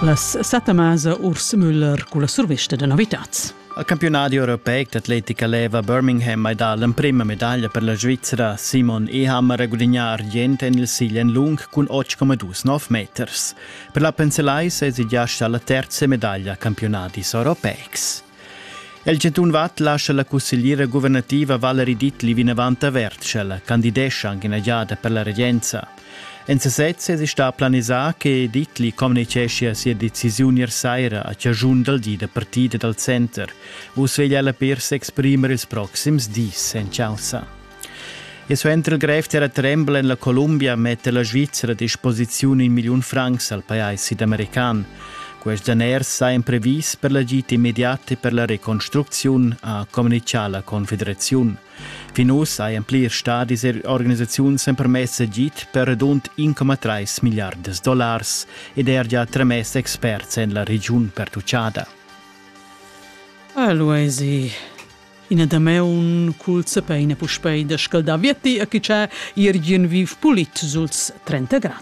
Las satamasa Urs Müller culla survista da novitads. Al campionadi europeic d'atletica leva Birmingham mai dà l'emprima medaglia per la Svizzera Simon Ehammer a gudignar argient en il silen lung cun 8,29 meters. Per la Penselais è già stà la terza medaglia a campionadis europeics. El chantun Watt lascia la cussegliera guvernativa Valerie Dittli vinavant averta, sch'ella candidescha anche in giada per la regenza. En sesez esi stà planisà che Ditli communiceschia sia decisiun ier saira a chaschun dal di da partida dal center. Vus veglia ella per s'exprimer ils proxims dis en chaussa. E suenter il grev terratrembel en la Columbia metta la Svizzera a disposiziun in milliun francs al pajais sidamerican. Quest daners sa imprevis per l'agit immediat e per la reconstrucziun, ha communichà la Confederaziun. Fin uss hajan plirs stadis er organisaziuns empermess agid per radund 1,3 milliardas dollars ed er gia tramess experts en la regiun pertuchada. Allora è ina damaun cul sepeina puspei da scaldar vietti a chi c'è irgin viv pulit suls 30 grad.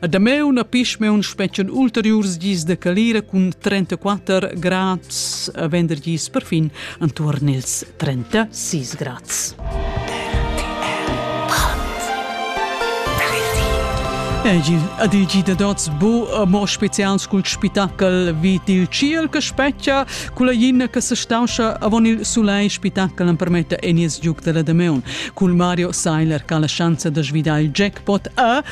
A Dameun pisme un spetschen ulteriurs gis de calira cun 34 grads a vender gis per fin antuorn ils 36 grads. Adigi de dots bu mo spezials cul spitackel vid il ciel che specchia cula ginna che se stauscha avon il sulei spitackel am permetta enies giuc della Dameun cul Mario Seiler che ha la chance de svidar il jackpot a